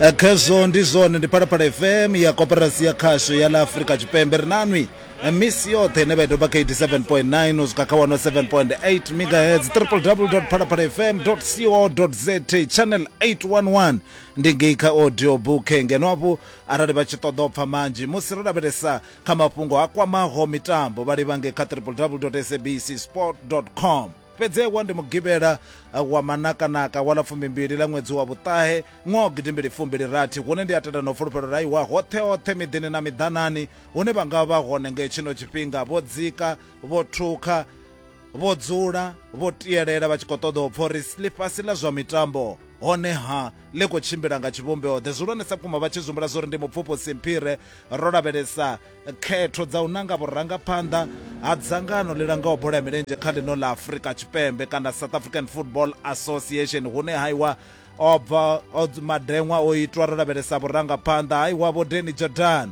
Eh, khezwo ndi zwone ndi phalaphala fm ya koperasi ya khasho ya la afurika tshipembe ri nanwi eh, misi yoṱhe ine vha itoba kha 87.9 u swika kha 107.8 megahertz www phalaphala fm co za channel 811 ndi ngei kha audio book ngeno avho arali vha tshi ṱoḓa u pfha manzhi musi ro lavhelesa Kha mafhungo a kwamaho mitambo vha livhange kha www.sabcsport.com. Fhedzewa ndi Mugivhela wa manakanaka wa ḽa fumimbili ḽa ṅwedzi wa vhuṱahe ṅwaha gidimbili fumbili rathi hune ndi a tenda na u fulufhelo ra iwa hoṱhe hoṱhe miḓini na miḓanani hune vha nga vha hone nga tshino tshifhinga vho dzika vho thukha vho dzula vho tielela vha tshi khou ṱoḓa u pfha uri ḽifhasi ḽa zwa mitambo honeha ḽi khou tshimbila nga tshivhumbeo-ḓe zwihulwanesa vhukuma vha tshi zumbula zwo ri ndi mupfufhusi mphire ro lavhelesa khetho dza u nanga vhurangaphanḓa ha dzangano ḽi langaho bola ya milenzhe kha ḽino ḽa afurika tshipembe kana south african football association hune haiwa o bva madeṅwa o itwa ro lavhelesa vhurangaphanḓa haiwa vho deni jordan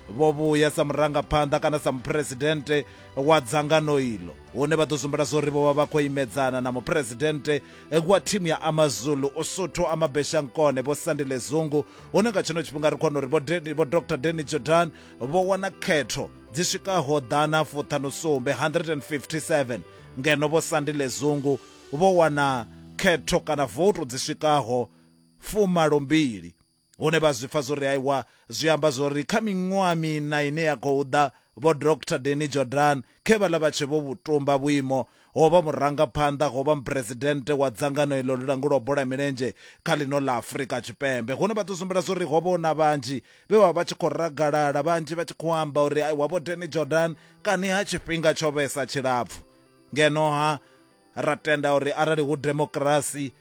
vho vhuya sa murangaphanḓa kana sa muphuresidennde wa dzangano iḽo hune vha ḓo sumbela zwo ri vho vha vha khou imedzana na muphuresidennde wa thimu ya amazulu usuthu amabeshankone vho sandile zungu hune nga tshino tshifhinga ri khona uri vho dr deni jordan vho wana khetho dzi swikaho ḓana fuṱhanusumbe 157 ngeno vho sandile zungu vho wana khetho kana voto dzi swikaho fumalombili hune vha zwi pfa zwo ri aiwa zwi amba zwo ri kha miṅwaha mina ine ya khou ḓa vho Dr Denny Jordan khe vha ḽa vha tshe vho vhutumba vhuimo ho vha murangaphanḓa ho vha muphuresidennde wa dzangano iḽo ḽi langulwa bola ya milenzhe kha ḽino ḽa Afrika Tshipembe hune vha ḓo sumbela zwo ri ho vha na vhanzhi vhe vha vha tshi khou ragalala vhanzhi vha tshi khou amba uri aiwa vho Denny Jordan kani ha tshifhinga tsho vhesa tshilapfu ngeno ha ra tenda uri arali hu demokrasi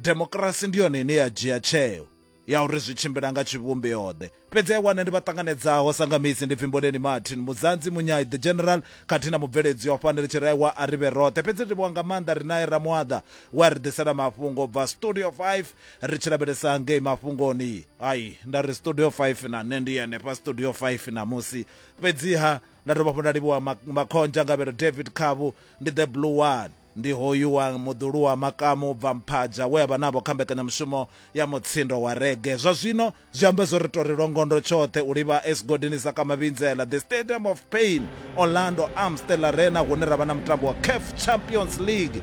demokirasi ndi yone ine ya dzhia tsheo ya uri zwi tshimbila nga tshivhumbeoḓe fhedzi a wana ndi vha ṱanganedzaho sanga misi ndi pfimboneni martin muzanzi munyai the general khathihi na mubveledzi wa fhani ri tshi raiwa a ri vhe roṱhe fhedzi ri livhuwa nga maanḓa ri nae ramuaḓa we a ri ḓisela mafhungo u bva studio 5 ri tshi lavhelesa ngei mafhungoni ai nda ri studio 5 na nṋe ndi henefha studio 5 na musi fhedziha nda dovha hafhu nda livhuwa makhonzha ngavhelo david khavu ndi the blue one Ndi hoyu wa muḓulu wa makamu u bva Mphaja we a vha navho kha mbekanyamushumo ya mutsindo wa rege. Zwa zwino zwi amba zwo ri tou ri longondo tshoṱhe u livha Esigodini sa kha Mavhindzela, The Stadium of Pain, Orlando, Amstel Arena hune ra vha na mutambo wa CAF Champions League.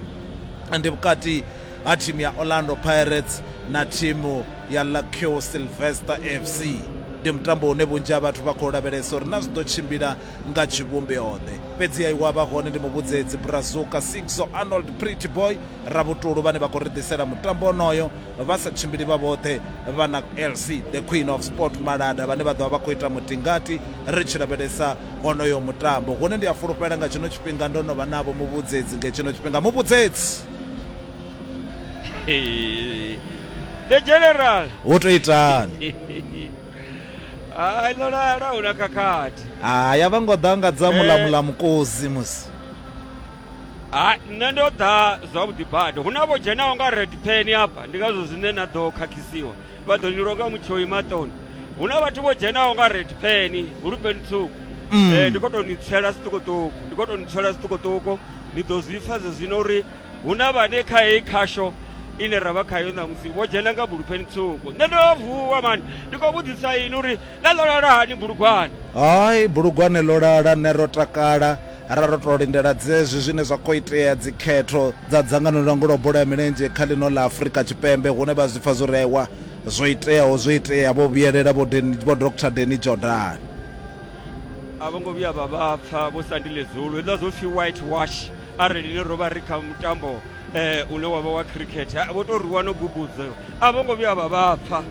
Ndi vhukati ha thimu ya Orlando Pirates na thimu ya Lakio Sylvester FC. Ndi mutambo une vhunzhi ha vhathu vha khou lavhelesa uri na zwi ḓo tshimbila nga tshivhumbeoḓe. Fhedzi a iwa vha hone ndi muvhudzedzi Brazuka, Sigso, Arnold, Pretty Boy, Ravhutulu vhane vha khou ri ḓisela mutambo onoyo vha sa tshimbili vha vhoṱhe, vha na LC The Queen of Sport Malada vhane vha ḓo vha vha khou ita mutingati ri tshi lavhelesa honoyo mutambo. Hune ndi a fulufhela nga tshino tshifhinga ndo no vha navho muvhudzedzi nge tshino tshifhinga. Muvhudzedzi! The General! Hu tou itani? hai ḽo lala hu na khakhathi hai a vha ngo ḓa nga dza mulamula mukosi musi hai nṋe ndo ḓa zwavhuḓi bada hu na vho dzhenaho nga red pen hafha ndi ngazwo zwine na ḓo khakhisiwa vha ḓo ni longa mutshoi maṱoni hu na vhathu vho dzhenaho nga red pen hulupeni tswuku ndi khou tou ni tsela zwiṱukuṱuku ndi khou tou ni tsela zwiṱukuṱuku ni ḓo zwi pfa zwezwino uri hu na vhane kha heyi khasho ine ra vha khayo ṋamusi vho dzhena nga bulufheni tswuku nṋe ndo vuwa mani ndi khou vhudzisa ini uri ḽa ḽo lala hani bulugwane hai bulugwane ḽo lala nṋe ro takala ra ro tou lindela dzezwi zwine zwa khou itea dzikhetho dza dzangano ḽa ngulo bola ya milenzhe kha ḽino ḽa afurika tshipembe hune vha zwi pfa zwo rewa zwo iteaho zwo itea vho vhuyelela vho dr deni jordan a vho ngo vhuya vha vha pfa vho sandile zulu hezwiḽa zwo pfhi white wash arali ni rovha ri kha mutambo eh, une wavha wa cricket ha, vho to rwiwa no gubudzo a vho ngo vhuya vha vha pfa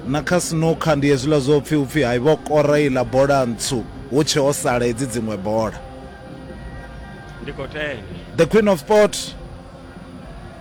na kha snooker ndi hezwiḽa zwo pfhi upfhi hai vho kora iḽa bola ntswu hu tshe ho sala hedzi dziṅwe bola ndi khou tenda the queen of sport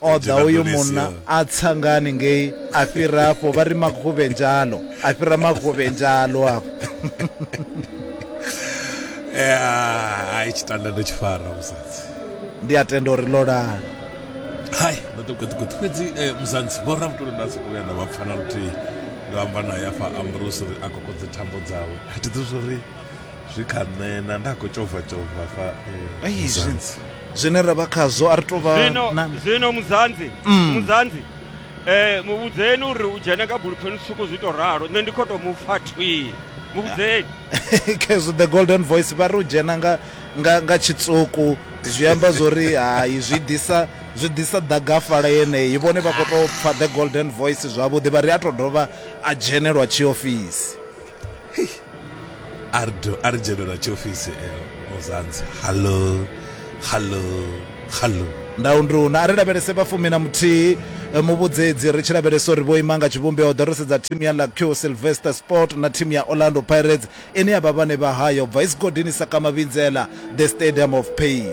o ḓa uyu munna a tsa nga haningei a fhira afho vha ri makhuvhe njalo a fhira makhuvhe njalo afho eh, ai tshitanda ndo tshi fara musadzi ndi a tenda uri ḽo lala hai maṱukuṱukuṱu fhedzi eh, musadzi vho rabutolo nda soko vhuya nda vha pfana luthihi ndo amba naye afha ambrose uri a kokodze thambo dzawe a thi ḓi zwo ri zwi kha nṋe na nda khou tshovha tshovha fa eh, Ai, zwi- Muzanzi. zwine ra vha khazwo a ri tou vha zwino na- zwino muzanzi Mm. muzanzi eh muvhudzeni uri u dzhene kha bulufheni tswuku zwi to ralo nṋe ndi khou tou mu pfa thwi muvhudzeni khezwo the golden voice vha ri u dzhena nga nga nga tshitsuku zwi amba zwori hai zwi ḓisa zwi ḓisa ḓagafala yeneyi vhone vha khou tou pfa the golden voice zwavhuḓi vha ri a tou dovha a dzhenelwa tshiofisi Hey. A ri do a ri dzhene lwa tshiofisi eh, Ozanzi. Hallo. Hallo. Hallo. Ndau ndi una a ri lavhelese vha fumi na muthihi eh, muvhudzedzi ri tshi lavhelesa uri vho ima nga tshivhumbeo ḓo ri sedza thimu ya Lacue Sylvester Sport na thimu ya Orlando Pirates ine ya vha vhane vha haya u bva Isigodini Sakamabinzela the Stadium of Pain.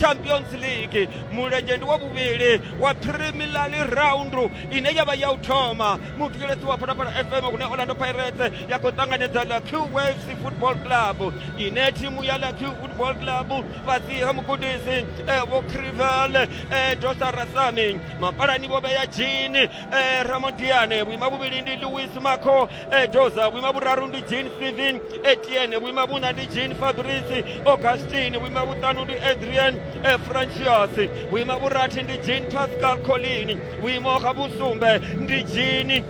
champions league mulenzhe ndi wa vhuvhili wa primilar round ine ya vha ya u thoma muthetshelesi wa phalaphala fm hune orlando pirates ya khou ṱanganedza lucky waves football club ine thimu ya lucky football club fhasi ha mugudisi eh, vho crivel eh, dosa rasami mapalani vho vheya jini eh, ramodiane vhuima vhuvhili ndi louis maco ejoza vhuima vhuraru ndi jean steven etienne vhuima vhuna ndi jean fabrice augustin vhuima vhuṱanu ndi adrian efrantius vhuima vhurathi ndi jean pascal colin vhuimo ha vhusumbe ndi jean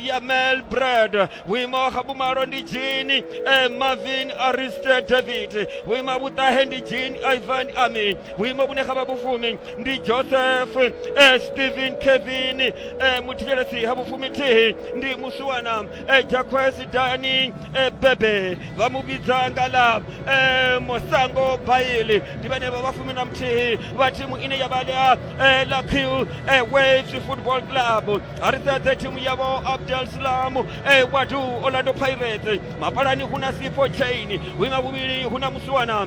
yamel brad vhuimo ha vhumalo ndi jean marvin ariste david vhuima vhuṱahe ndi jean ivan ami vhuimo vhune ha vha vhufumi ndi joseph eh, stephen kevin eh, muthikelesi ha vhufumitihi ndi musiwana eh, jacques dani eh, bebe vha mu vhidza nga ḽa eh, mosango baili ndi vhane vha vhafumi na muthihi vha thimu ine ya vha ḽa eh, ḽa q eh, waves football club a ri sedze thimu yavho abdel slam eh, wadu orlando pirates mapalani hu na sifo chain winga vhuvhili hu na musiwana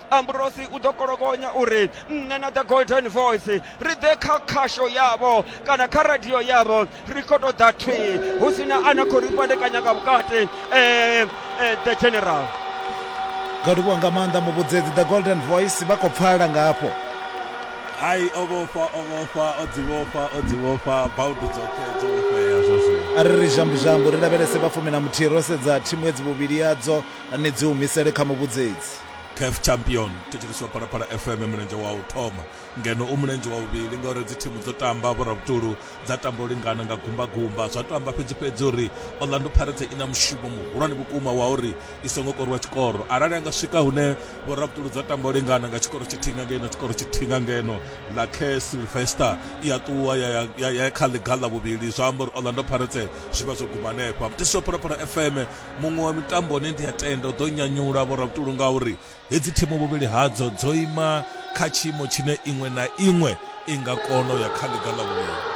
amburosi u ḓo kolokonya uri nṋe na the golden voice ri ḓe kha khasho yavho kana kha radio yavho ri khou tou ḓa thwii hu si na a na khou ri fhandekanya nga vhukati um the general nga livhuwa nga maanḓa muvhudzedzi the golden voice vha khou pfala nga hafho hai o vhofha o vhofha o dzi vhofha o dzi vhofha baudu dzoṱhe dzo vhofhea zwo zwino a ri ri zhambuzhambu ri lavhelese vhafumi na muthihi ro sedza thimu edzi vhuvhili yadzo ni dzi humisele kha muvhudzedzi caf champion thetsheleswa phalaphala fm mulenzhe wa u thoma ngeno u mulenzhe wa vhuvhili ngauri dzi thimu dzo tamba vhoravhutulu dza tamba u lingana nga gumbagumba zwa to amba fhedzi fhedzi uri orlando pirates i na mushumo muhulwane vhukuma wa uri i songo korwa tshikoro arali a nga swika hune vhoravhutulu dza tamba u lingana nga tshikoro tshithihi nga ngeno tshikoro tshithihi nga ngeno la care silvester i a ṱuwa ya, ya, ya, ya kha ḽiga ḽa vhuvhili zwa amba uri orlando pirates zwi vha zwo guma hanefha mtheswa phalaphala fm muṅwe wa mitambo une ndi a tenda u ḓo nyanyula vhorabutulu ngauri hedzi thimu vhuvhili hadzo dzo ima kha tshiimo tshine iṅwe na iṅwe i nga kona u ya kha ḽiga ḽa vhuvhili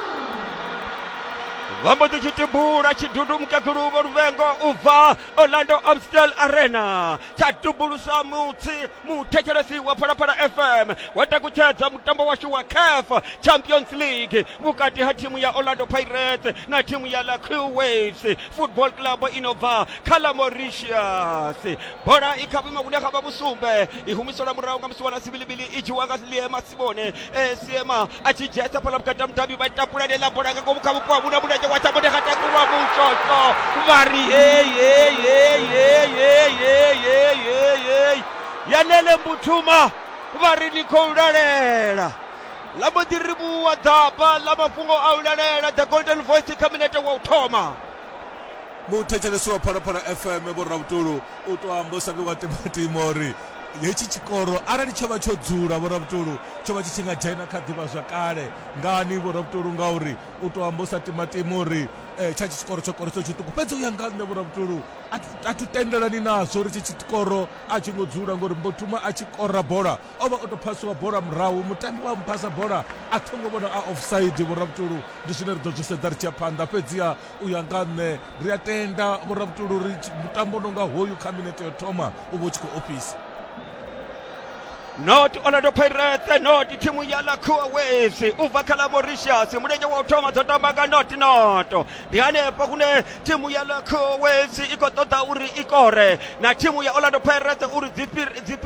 vha mbo ḓi tshi tibula tshidudu mukegulu vho luvengo u bva orlando amstel arena tsha tubulusa mutsi muthetshelesi wa phalaphala fm wa takutshedza mutambo washu wa caf champions league vhukati ha thimu ya orlando pirates na thimu ya la crew waves football club inobva kha la mauritius bola i kha vhuimo vhune kha vha vhusumbe i humiselwa murahu nga musi wana sibilibili i dzhiwa nga liema simone e siema a tshi dzhia sa fhala vhukati ha mudavhi vha takula lela bola nga ngomu kha vhupo ha vhuna mulenzhe wa sabone kha takulwa mutshotsho vha ri yalele mbuthuma vha ri ni khou lalela ḽa mbo ḓi rivhuwa ḓaba ḽa mafhungo a u lalela the golden voice kha minete wa u thoma muthetshelesi wa phalaphala fm vho ravhutulu u to amba u sa vhi wa timatima uri hetshi tshikoro arali tsho vha tsho dzula vho ravhutulu tsho vha tshi tshi nga dzhena kha ḓivha zwa kale ngani vho ravhutulu ngauri u to amba u sa timatima uri um tsha tshi tshikoro tsho koroso tshiṱuku fhedzi u ya nga nṋe vho ravhutulu a thu tendelani nazwo uri tshi tshikoro a tshi ngo dzula ngori mbo thuma a tshi kora bola o vha o tou phasiwa bola murahu mutambi wa muphasa bola a thongo vhona a offside vhoravhutulu ndi zwine ri ḓo zwi sedza ri tshi ya phanḓa fhedziha u ya nga nṋe ri a tenda vhoravhutulu ri mutambo o no nga hoyu kha minete yo thoma u vha u tshi khou ofhisa not orlando pirates not thimu ya lakhuwa west u bva kha ḽa mauritius mulenzhe wa u thoma dzo tamba nga not not ndi hanefho kune thimu ya lakhuwa west i khou ṱoḓa uri i kore na thimu ya orlando pirates uri dzi fhire- dzi fhire